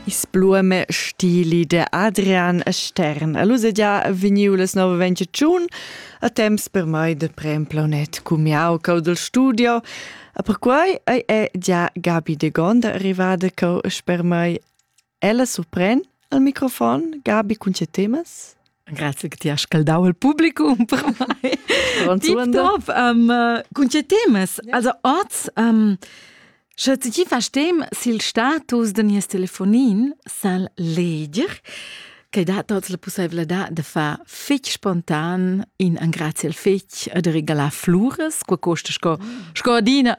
Isblueme stili de Adrian Stern. E lus è già vegniu les 922, a temps per mai de prem planet cumiau cau del studio. A per quai ei è già Gabi de Gonda arrivada cau sper mai. Ella surpren al microfon Gabi cun tge temas? Grazie che ti hai scaldau il publicum per mai. Top, um, cun tge temas? Ja. Also oz, um, sche ti verstehst sil status de nies telefonin, sal leger che dat tots la possibilità de far fitch spontan in angrazi al fitch e de regalar flures, qua costa sco, mm. sco adina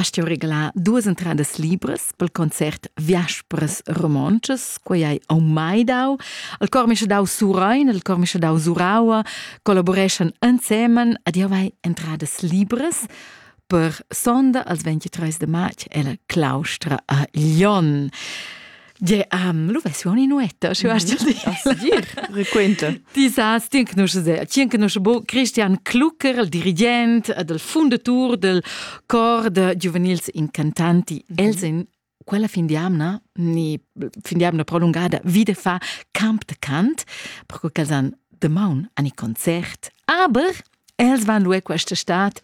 Hast ti regalà duas entradas libras pel concert Viaspers romontschas, quei hai au mai dau. Il cor mi sche dau Surein, il cor mi sche dau Suraua, collaboreschan ensemen ad jau hai entradas libras per sonda als 23 de marz ella claustra a Lyon. Ge am lu vessi inuetta schu hast dir Disas tien che se tien che bo Christian Klucker il dirigent del fundatur del cor de giuvenils incantanti els in quella fin di amna ni fin di amna prolungada vide fa camp de cant perché quels han de maun an i concert aber els van lu questa stat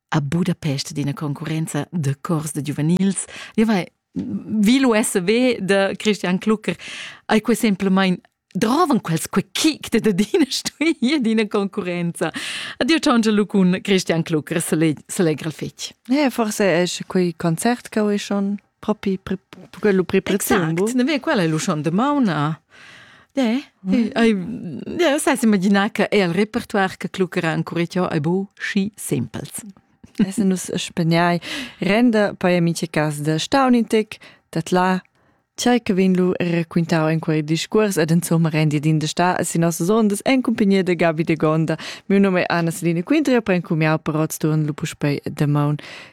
a Budapest d'ina concurrenza de cors de giuvenils. Io vai vi l'USB de Christian Klucker ei quei semplamein drovan quels quei kick de d'ina stuia d'ina concurrenza. Addio ciangia lu cun Christian Klucker, se, le, se legra il fetg. Ja, forse è quei concert che ho schon propi quello pri preziumbo ne ve quella è l'uscion de mauna Ja, ja sai imaginar che è il repertoire che cluccherà ancora ciò è bu schi simpels. Esse nus spegnai renda poi amici cas de Staunintic dat la Chai che vinlu racquintau in quei discurs ed insomma rendi din de sta a si nossa sondas en compagnia de Gabi de Gonda. Mio nome è Anna Selina Quintria, poi encumiau per Rotsturn lu puspei de maun.